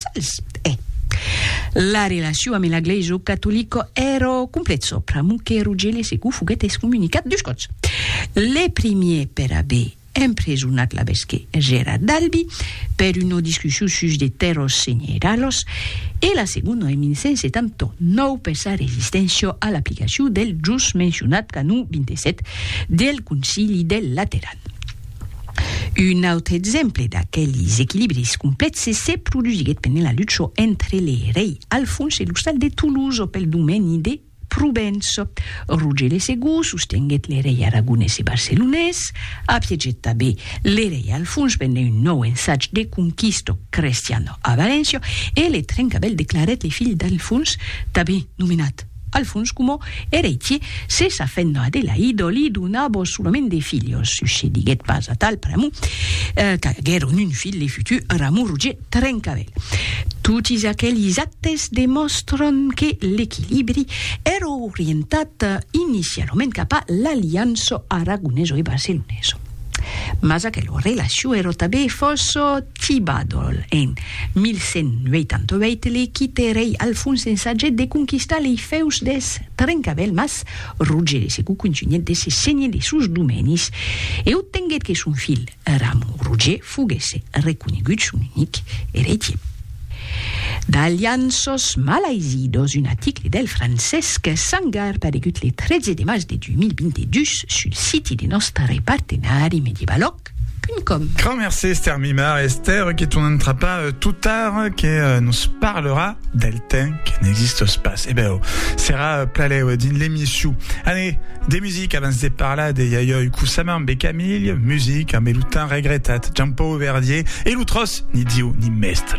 Sòls, e. La relacion ame la glèisa catolica èra complet sòpra mon que Rogèle Segou foguèt excomunicat dus còps. Le primier per aver empresonat l'abesque Gérard d'Albi per una discussion sus de tèrras senheralas e la segona en 1179 per sa resisténcia a l'aplicacion del just mencionat canon 27 del Concili del Lateran. Un autre exemple d'aquelis equilibris complèxes se produsiguèt pendent la lucha entre le rei Alfons e l'ostal de Toulouse pel domeni de Provenç. Roger de Segur sostenguèt le rei aragonés e barcelonés, apiegèt tanben le rei Alfons pendent un nòu ensatge de conquista crestiana a Valéncia e le Trencavèl declarèt le filh d'Alfons tanben nomenat Al fons coma eretie, se sa fent a Adelaïdo li donabo solament de filhos, sucediguèt pas atal pr'amor qu'aguèron un filh le futur Ramon Roger Trencavèl. Totis aquelis actes demòstran que l'equilibri èra orientat inicialament cap a l'aliança aragoneso e barceloneso. Mas aquela relacion èra tanben fòrça Tibadol en 1188 li quite rei Alfons ensagèt de conquistar lei fèus deth Trencavèl mas Roger de Segou contunhèt de se senhir de sos domenis e obtenguèt que son filh Ramon Roger foguèsse reconegut son unic eretier. D'Alianços malaisidós, un aticle del Francesc Sangar paregut le 13 de març de 2022 sul siti de nòstre partenari Medievalo. Www.radiocausas.com Grand merci Esther Mimar, Esther que ton entrapa euh, tout tard, euh, que euh, nous parlera del temps que n'existe pas. Eh ben, oh, serà euh, plaléu euh, dins l'emission. Allez, des musiques avant de parler de Yayoi Kusama, Bé Camille, musique, amb le temps regrettat, Jean-Paul Verdier, et l'outros, ni Dieu, ni mestre.